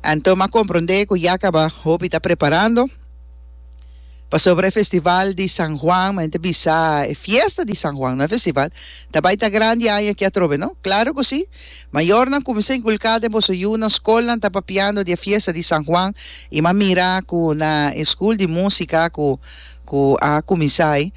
Anto m'a comprende cu ya caba hopi ta preparando pasobra e festival di San Juan, mi mente bisa e fiesta di San Juan, no e festival, ta bay ta grandi aña aki atrobe, no? Claro cu si! Mayornan cuminsa inculca den boso yunan, scolnan ta papiando di e fiesta di San Juan y m'a mira cu na e school di musica cu cu a cuminsa ay,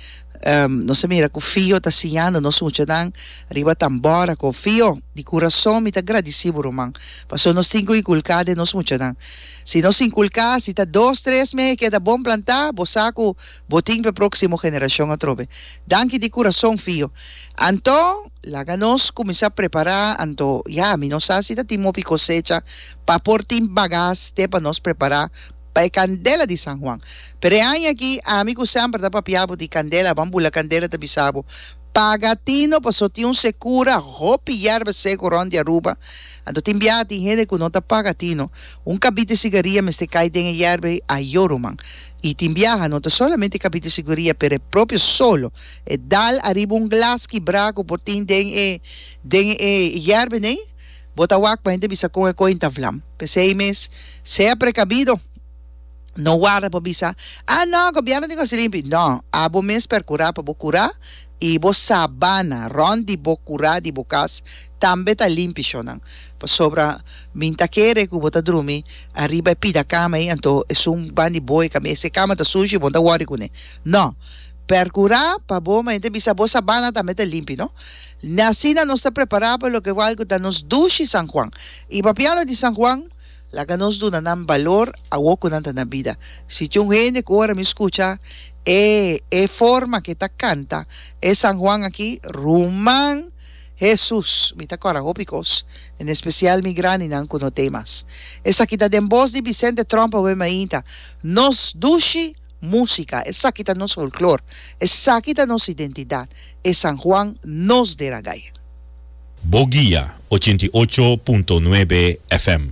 Nos a mira cu Fio ta siñando nos muchanan riba tambora con Fio. Di curason mi ta gradici bo ruman, pasobra nos tin cu inculca den nos muchanan. Si nos inculca, si ta dos, tres mey a keda bon planta, bo sa cu bo tin pa e proximo generacion atrobe. Danki di curason Fio. Anto, laga nos cuminsa prepara, anto ya, mi no sa si ta tin mopi cosecha pa por tin bagas te pa nos prepara. pa e candela di San Juan. Pero e aña aki, ami cu semper ta papia bo di candela, ban bula candela ta bisa bo, Paga tino paso tin un secura hopi yerba seco rond di Aruba, anto tin biaha tin hende cu no ta paga tino, un cabite sigaria mester cay den e yerba a yoro man. Y tin biaha no ta solamente cabite sigaria pero e propio solo, e dal ariba un glas kibra cu por tin den e den e yerba ney. Bo ta wak pa hende bisa kon e koin ta vlam. P'esei mes, sea prekabido. No warda pa bisa, Ah, no, gobièrnu tin gosi limpi. No, abo mes perkurá pa bo kurá i bo sabana rònt di bo kurá di bo kas tambe ta limpi shonnan. Pasobra mi N ta kere ku bo ta drumi ariba e pida kama ei, anto esun ban di bo ei ka mester. E kama ta sushi i bo N ta wòri kuné. No! Percura pa bo mente bisa bo sabana tambe ta limpi, no? Asina nos ta prepara pa loke wal cu ta nos dushi San Juan. Y papiando di San Juan, laga nos duna nan balor awo cu nan ta na bida. Si tin un hende cu ora mi scucha e e forma cu e ta canta e San Juan aki, ruman, Hesus, mi ta cora hopi cos, en especial mi grandinan cu no t'e mas. Esaki ta den boz di Vicente Tromp awe mainta, Nos dushi! Música, esaki ta nos folklor, esaki ta nos identidat, e San Juan nos de Ragaya. Bo guia ochenta i ocho punto nuebe FM.